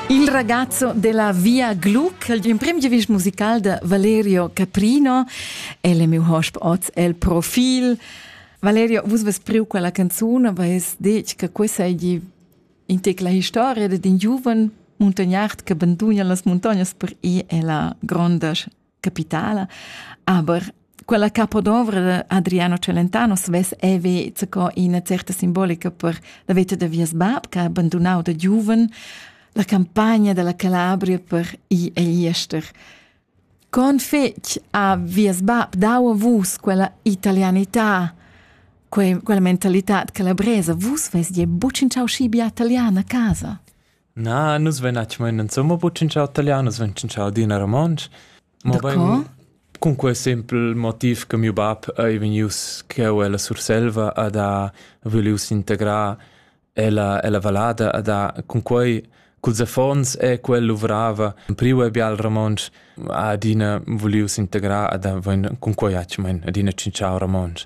Il ragazzo della Via Glu, l'emprim giavist musical de Valerio Caprino, è le mio hosp oz el profil. Valerio, vus ves priu quella canzone, aber es detg che questa è in tec la historia de un giovane montagnard che abandona las montagnes per ir alla grande capitala. Aber quella capodovra de Adriano Celentano svess eve zaco ina certa simbolica per la veta de vies bab che ha abandonau da giuven la campagna della Calabria per i e iester. Con fec a vies bab dau a vus quella italianità, quella mentalità calabresa, vus vest je bucin ciao scibia italiana a casa? Na, nus vein actualmein insomma buc tschintschau talian, nus vein tschintschau adina romontsch. Mobein cun quei sempel motiv che miu bab ei vegnius cheu ella Surselva ad ha vulius integrar ella, ella vallada ad ha cun quei culs affons e quel luvrava priu e bia il romontsch ha adina vulius integrar ad ha vein cun quei actualmein adina tschintschau romontsch.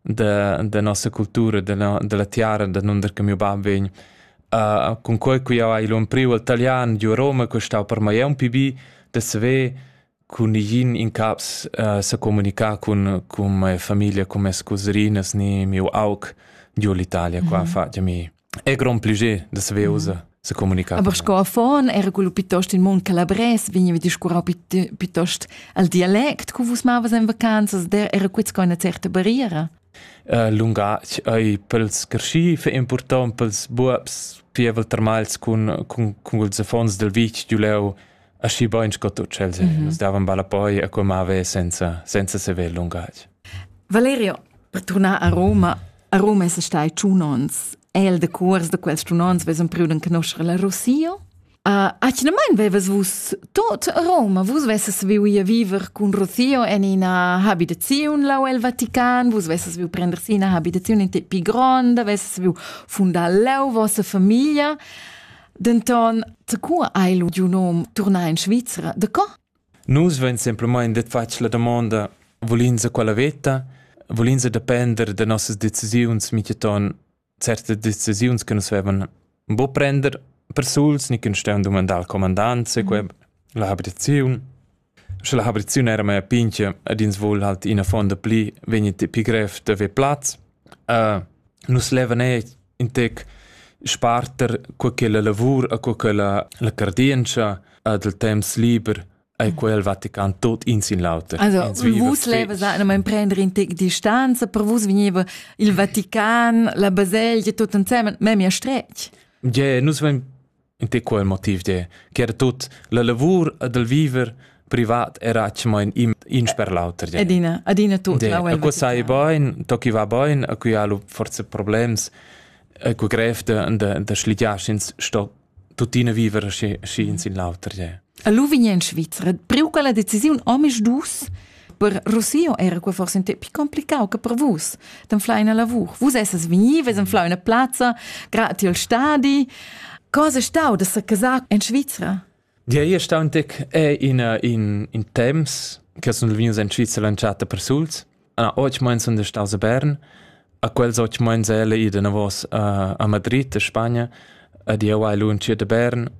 da, da nossa cultura, dalla, dalla tiara da nunder che mio bab vegn. Uh, con quei qui ha l'on priu al italian giu a Roma, che stau per mai un pi bi, da saver con igin in caps uh, se comunica con, con mia famiglia, con mie scuserinas, ni mio aug giu l'Italia, qua mm -hmm. fa mi È grond pliger da saver usar se comunicare. Aber sco affon era quello piuttost in mund calabrès, vegniva discurrau piuttost al dialect cu vus mavas en vacanzas, der era quits co una certa barriera. Uh, lungatg ei pels carschi fe important pels buabs pievel termals cun cun cun ils affons del vitg giuleu aschi bain sco tu cel se mm -hmm. nos davan balla poi a come ave senza senza sever lungatg Valerio per tornar a Roma A Roma es stai tschun ons. El de cuors da quels tschun ons ves empriu d'enconoscher la Rosia. Uh, atgnamain vevas vus tot a Roma, vus vesses viu ir viver cun Rocio en ina habitaziun lau el Vatican, vus vesses viu prender si ina habitaziun in pi gronda, vesses viu fundar leu vossa familia. Denton, te cu hai lu giu nom turnar in Svizzera? De co? Nus vein semplamein detg fatg la damonda, vul'ins a quella veta? Vul'ins depender da nossas decisiuns mintgaton certas decisiuns che nus vevan buca prender persuls ni che nus stevan dumandar al comandant se quei la habiziun. Sche la habiziun era mea pintga ed ins vul halt ina fonda pli, vegni ti pli grev d'haver plaz. Nus levan eir ün tec sparter co ch'ella lavur e co ch'ella la cardientscha dal temps liber e quel Vatican tuot in sin l'auter. Also vus levas anemain prender in tec distanza, per vus vegniva il Vatican, la baselgia, tuot ensemen, memia stretg. Yeah, nus vain In ti quel motiv de, che era tut la lavur ed il viver privat era atschemain in, in sper l'auter. de. Adina, adina tut. De, la a cu sai bain, to chi va bain, a cui ha lu forse problems, a cu grev de, de, de schligiar ins sto tuttina viver schi, schi in sin l'auter. de. A lu vign in Svizra, priu quella decisiun omis dus, Per Rossio era quei forse un tep più complicato che per vus. D'anflar una lavur. Vus esses venives d'anflar una plazza, grati al stadi. Cosa è stau da se casar in Svizzera? Dir ei stau un tec è in, in, in temps che sono venius in Svizzera lanciata per suls. Ah, oggi meins sind staus a Bern. A quels oggi meins elle ida navos a, a Madrid, a Spagna. Ad io hai lunciert a Bern.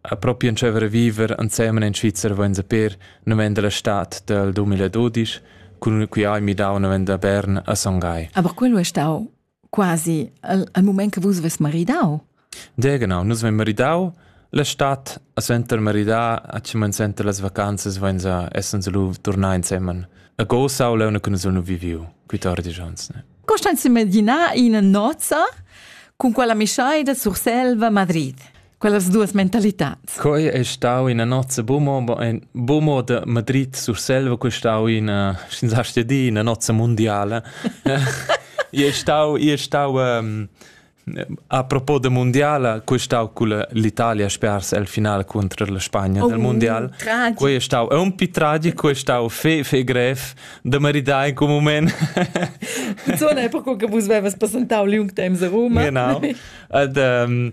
A propi entscheiver a viver ensemen in Svizzer vainsa per naven dalla stad dal 2012 cun cui hai midau naven da Bern a Son Gai. Aber quello è stau quasi al, al moment che vus ves maridau. De genau, nus vein maridau la stad a senter maridar a cimen senter las vacanzas vainsa essens lu turnar insemen. A go sau leu ne cunus nu viviu, quitardi jons ne. Costanza Medina in nozza con quella mischai da Surselva Madrid. quellas duas mentalitats. Quei è stau ina nozza bumoba, ein bumo de Madrid sur Selva, quei è stau ina, senza di, ina nozza mondiale. Io è stau, io è stau um, a propos de mondiale, quei è stau con l'Italia spers al finale contro la Spagna oh, del mondiale. Tragico. Quei è stau un po' tragico, quei è stau fe, fe grev de maridare in quel moment. Zona è proprio che vos avevas presentato l'Jungtheim a Roma. Genau. Und, ähm,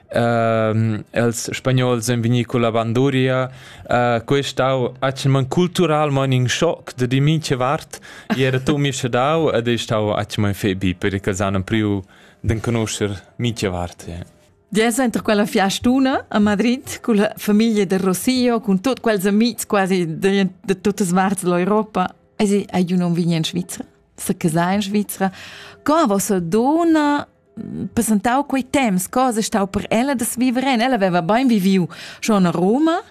Ehm, els spagnols ein vegni culla banduria. Uh, quei è stau atschman culturalmein in schock da di mincha vart. E era tu mi schadau ed è stau atschman febi perché els hanno priu den conoscer mincha vart. Yeah. Dies entro quella fiastuna a Madrid con la famiglia del Rossio, con tutti quels amici quasi de, de tutte le parti dell'Europa. E sì, e io non vegni in Svizzera, se casai in Svizzera. Con vostra donna presentau quei temps cosa stau per ella da viver en ella aveva bein viviu schon a Roma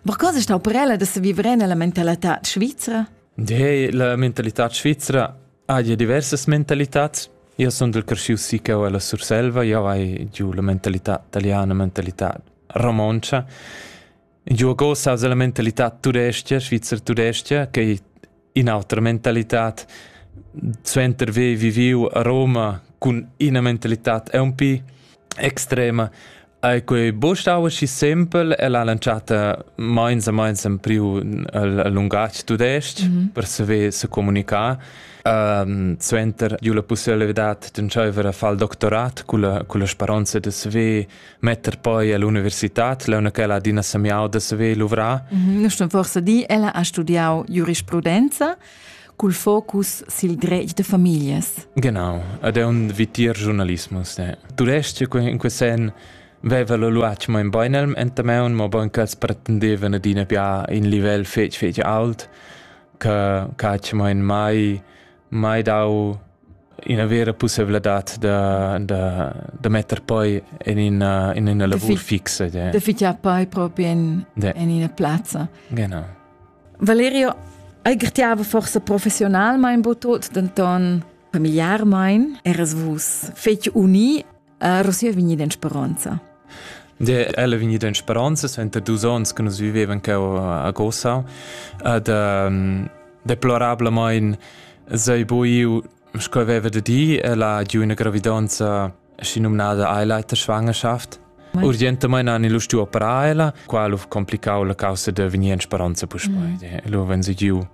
ma cosa stau per ella da viver en la mentalità svizra De, la mentalità svizra ha ja diversas mentalitats io sono del cresciu sì che ho la Surselva io hai giù la mentalità italiana mentalità romoncia Giugo sa la mentalità tudestga, svizzer-tudestga, che è un'altra mentalità. Suenter aver viviu a Roma con una mentalità è un po' extrema. E quei bostau si simpel e l'ha lanciata meins a meins in più il lungatg tudestg mm -hmm. per saver se comunicare. Um, suenter giu la possibilità d'entscheiver a fare il doctorat con la, con la speranza di saver metter poi all'universitad launa ch'ella adina semiau da saver luvrar? Nu sto forsa di, ella ha studiau giurisprudenza cul focus sil dretg da famiglias. Genau, ed è un vitir giornalismus. Eh. Tudestg in quel sen veva lo luac mo in beinelm entameun, mo bon ch'els pretendevan adina bia in livel fetg fetg alt, che catsch mo in mai mai dau ina vera pusseivladad da, da, da metter poi en ina, in ina lavur fixa. De. De fitar poi proprio in, de. in ina plazza. Genau. Valerio, ei gertiava forse professionalmein bo tot, denton familiarmein eras vus fetg uni Er si è vegnida in speranza. De ella vegnida in speranza suenter dus onns che nus vivevan cheu a Gossau ed um, deplorablement sei buiu sco aveva da di ella di una gravidanza si nominada Eileiter Schwangerschaft. Urgentemente hanno lo stu operar ella, qual complicau la causa de venir in speranza puspoi. Mm. Lo wenn sie giu,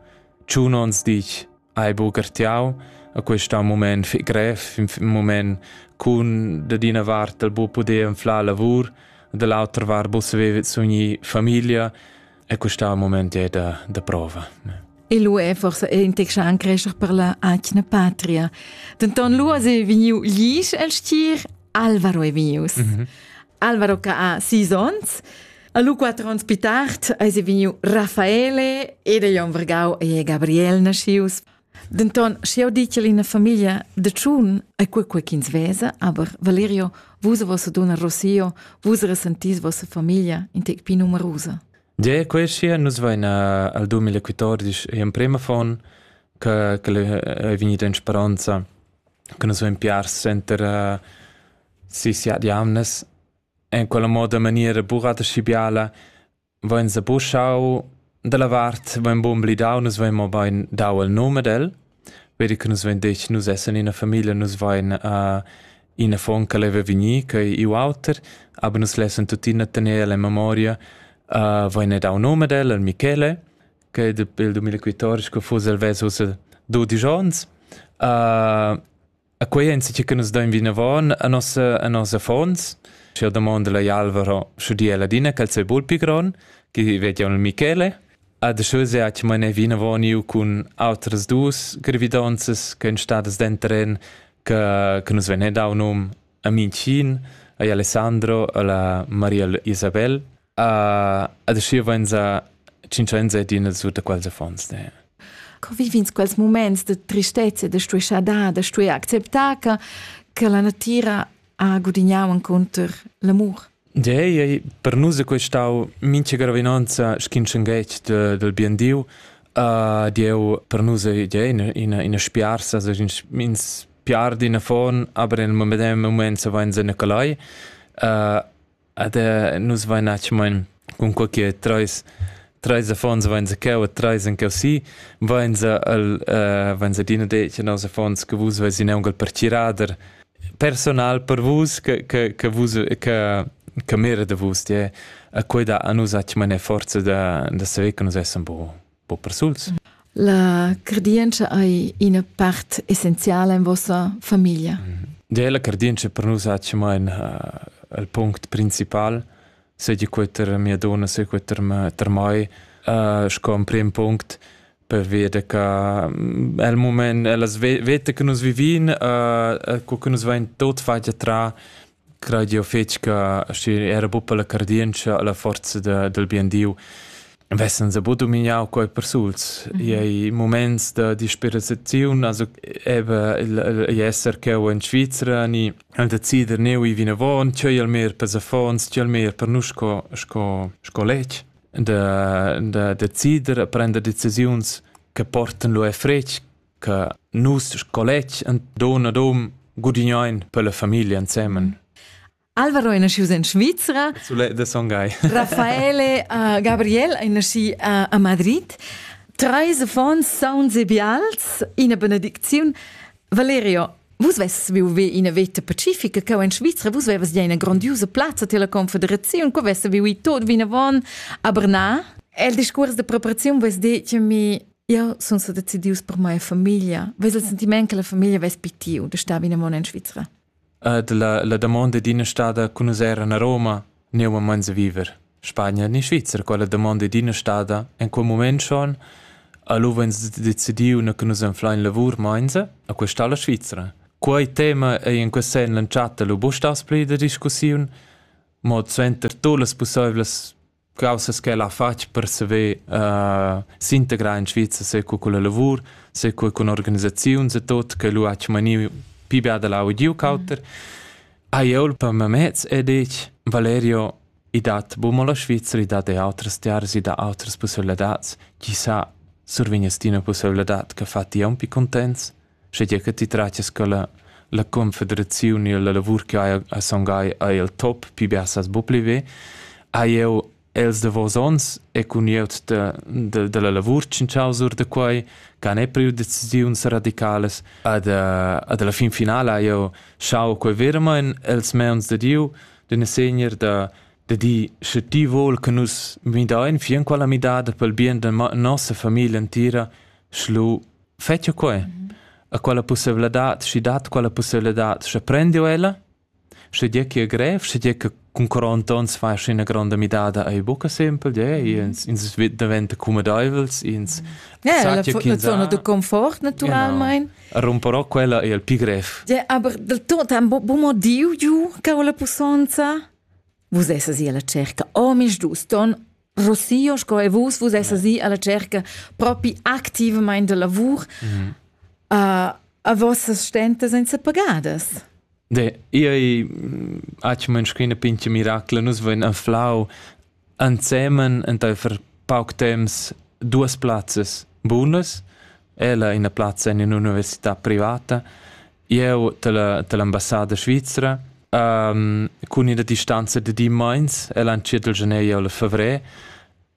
tschun ons dich, hai buca ertiau a questo moment fich grev, in moment cun da d'ina vart dal bu poder inflar lavur, da l'autra vart bu saver sugni famiglia e questo moment è da, da prova. E lu è forse in texta an crescer per la anchna patria. Denton lu è vegniu glis el stir Alvaro è vegnius. Mm -hmm. Alvaro che ha sis onns A lu quattro onns più tard eisi vegniu Raffaele ed ei on vargau e Gabriel naschius. Denton, sche jau ditg ina famiglia de tschun, è quei quei ch'ins vesa, aber Valerio, vus vossa donna Rossio, vus resentis vossa famiglia in tec più numerosa. Ge, quei sia nus vaina al 2014 e emprema fon che che è vegnida in speranza che nus vein piars center uh, si si ad jamnes En quella moda a maniera buca aschi biala vein sebuschau dalla vart, vein buca emblidau, nus vein mobein dau il num ad el, vedi che nus vein detg nus essan ina famiglia, nus vein uh, in affon che leva vegnir, che ei iu auter, aber nus lessan tuttina tener el en memoria, uh, vein ei dau num ad el, al Michele, che dapi il 2014 che fuss el vess ussa dudisch onns, uh, E quei è insatge che nus dain vinavon a nossa, a nossa affons. Sche io domanda la Alvaro, sche di Ladina che sei bul pi gron, che vediamo il Michele. A de schö se hat meine Wiener Warniu cun outras dus gravidonzas che en stadas denteren che, che nus venne dau num a Mincin, a Alessandro, a la Maria Isabel Ad aschi vainza cincenza ed ina sutta quals affons. Ne? Convivins quels moments de tristezza, de stueschada, de stue acceptar che, che la natira ha gudignau inconter l'amur. Ja, ja, per nus è questau mincha gravinanza schinschenghetg de, del bien Dio. Uh, Dieu per nus è ja, ina, ina, ina spiarsa, also ins piardi in affon, aber in medem moment se vain se Nicolai. Uh, Ed eh, nus vain atschamain cun co che trais trais affons vain sa cheu e trais en cheu si, vain sa el uh, vain sa adina detg nos affons che vus veis in aungal partirader personal per vus che che che vus che che mira da vus tie a quei da a nus atschamain forza da da saver che nus essem bo po persuls. La cardientscha ei ina part essenziala in vossa famiglia. Ja, la cardientscha per nus ha mai il punct principal, se che queter mia donna, se queter ter mai, uh, sco un prim punct per vedere che mm, è il momento, è la vita che noi viviamo, uh, che noi va in tot faccia tra Craid jeu fetg che schi era buca la cardientscha, la forza da, dal bien Diu vessan sa buca domignau quei persuls. Mm -hmm. Ei moments da disperaziun, also eben ei esser cheu in Svizra ni decider neu i vinavon, tgei al meir per affons, tgei al meir per nus sco sco sco letg da da decider a prender decisiuns che portan lu e fretg che nus sco letg en don ad hom gudignain per la famiglia ensemen. Alvaro è nasciuto in Svizzera. Soleil de Songhai. Raffaele uh, Gabriel è nasciuto uh, a Madrid. Treis affons sauns e bials, ina benedicziun. Valerio, vus vesses vive ina veta pacifica, che in Svizzera vus vevas ja ina grandiosa plazza della confederazione, che vesse vive tot vinavon a Bernard. El discurs de preparazione vos detto mi Io sun sa decidius per mia famiglia. Ves il sentiment che la famiglia ves pi tiu de star vina mon in Svizra? Uh, de la, la domanda d'ina stada con us era a Roma, ne a mans a viver. Spagna ni Svizra, quella domanda d'ina stada, in quel moment schon, allora ens decidiu na che nus enflain lavur mainza a questa la Svizra. Quei tema è in quest sen lanciata lu bustas pli da discussiun, mod suenter tu las possiblas Caussas ch'el ha fatg per saver uh, s'integrar in Svizra seco culla lavur, seco cun organisaziuns e tot, che lu ha maniu pi bia da lau e giu cauter, ha jeu per mamez e detg, Valerio, i dat bu mo la Svizra, i dat e outras tiaras, i dat outras pusseibilitads, chi sa survegnas ti una pusseibilità che fa ti un pi contents? schegia che ti tratias co la, la confederaziun e la lavur che hai a songai ei el top pi bia sas bu pli ve hai eu els de vos ons e cun ieut de, de, de la lavur cincausur de quai can è priu decisiuns radicales ad ad la fin finala io schau quei vermain els meons de Dio d'una segner de de di sche ti vol che nus mi da in fin quella midada pel bien de nossa famiglia entira schlu Fetsch'jeu quei? Ha quella pusseivladad, schi dat quella pusseivladad, sche prendiu ella? Sche dir che è grev, sche dir che cun 40 onns fais ina gronda midada ei buca sempel, de, ins, ins daventa cumedeivels, ins yeah, la, la zona de confort naturalmein. Genau. Romperò quella è il più grev. Ja, aber del tot ha bu motiu giu ca la pussonza. Vus esses io la cerca, oh mis dus ton Rossio, sco e vus, vus essas i alla cerca propi activamente de lavur mm -hmm. uh, a vossas stentas senza pagadas. De, io aci mönschina pinche miracla, nus vain anflau ansemen enteifer pauc temps duas plazzas bunas, ella ina plazza in un'università privata Jeu dall'ambassada svizra um, cun ina distanza da di meins e l'anciet del genei al fevrer.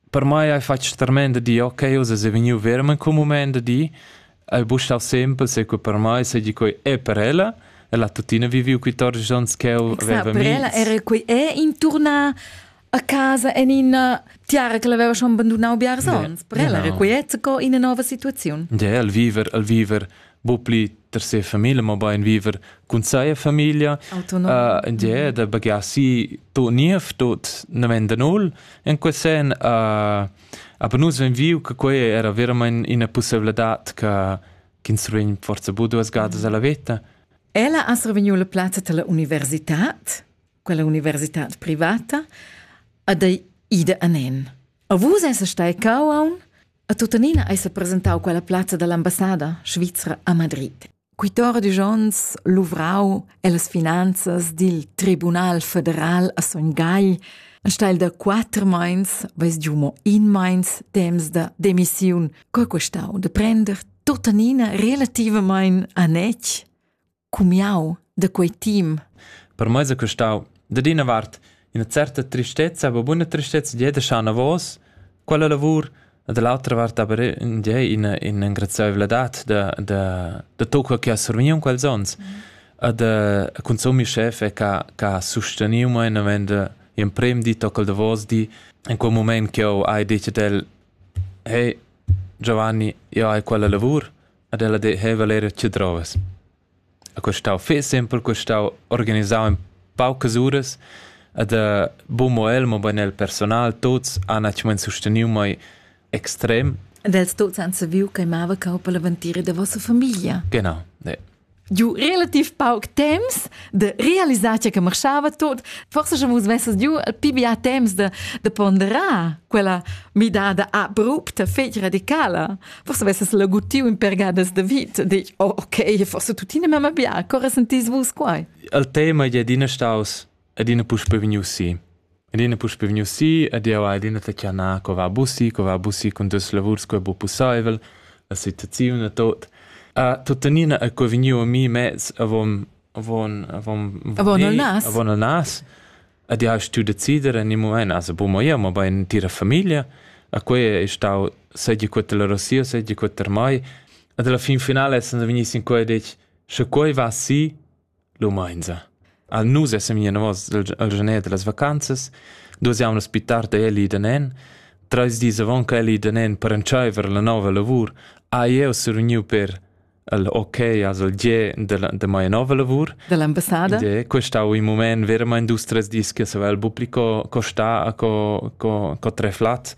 Per mai hai fatg tremenda di, ok, uss è vegniu vermen come moment da di, hai buscau sempre se che per mai seigi quei è per ella e la tuttina viviu 14 onns che eu aveva mi. Per ella era quei è intorna a casa en ina tiara che l'aveva schon bandunau biars onns. Per ella era quiet co ina nova situaziun. Ja, el viver, el viver, bu pli ter se famiglia, ma bein viver cun seia famiglia. Autonom. Uh, ja, da bagasi to niev, tot namenda null. In quel sen, uh, aber nus ven viu che quei era veramente una possibilità che ch'ins rin forza bu duas gadas alla vita. Ella ha survegniu la plazza della università quella universitad privata, ad ei ida anen. A vus esa stai cauaun? A tuttenina esa presentau quella plazza dall'ambassada svizra a Madrid. Quitore de Jons luvrau las finanzas dil Tribunal federal a Son Gagl a steil da quatter meins, weis giu mo in meins temps da demissiun, co questau de prender tuttenina relativamein a nec? cumiau da quei team. Per mei sa custau dad ina vart ina certa tristezza, aber buona tristezza di da Schanavos, quella lavur e dall'altra vart aber in di ina in engrazieivladad da da da tocca che ha survigniu quels ons. Mm. E da consumi chef che ha susteniu mei navend emprem di toccal da vos di in quel moment che ho hai detto del hey Giovanni, io hai quella lavur, Ad ella deheva era tschedrovas. Ha custau fest empel custau organisau in paucas uras ed ha buca el, mobein il personal, tuts han actualment susteniu mei extrem. Ed els tuts han saviu ch'ei mava cau per la ventira da vossa famiglia. Genau, ne. giu relativ pauc temps de realisar che marchava tot forse schon vus messes giu al pibi a temps de de ponderar quella midada abrupta fetg radicala forse vesses la gutiu in pergadas de vit dic oh okay forse tuttina mema bia corre sentis vus quai al tema je adina staus adina puspei vegnius si. Adina puspei vegnius si ed jeu hai adina tschanà co va bussi, co va bussi cun dus lavurs co è bu pusseivel, la situaziun e tot. A tuttenina è co vegniu a mi mez avon avon avon avon il nas avon il nas ed jeu stu decider en il moment also bu mo jeu mo bein tira famiglia a quei è stau seggi quetta la Rosia seggi quetta mai ed alla fin finale essendo vegni sin quei detg sche quei va si Lumainza. Al nus essem i anavos al janer da las vacanzas, duos jaunas pi tard è el i da nen. Trais dis avant che el i da nen per entschaiver la nouva lavur, ha jeu survgniu per il ok als il gie della, da mia nova lavur. Dell'ambassada. Gie, questo ha un moment veramente dus tres dis che se va al pubblico co, co sta a co, co, co tre flat.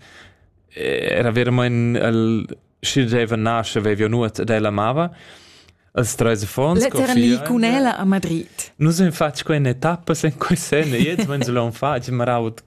Era veramente il schi deva nasce vevio nuot ed ella amava als treis affons Letterally cun ella a Madrid. Nus en fatg quei etappa sen quei sen e jetzt wenn so l'on fatg maraut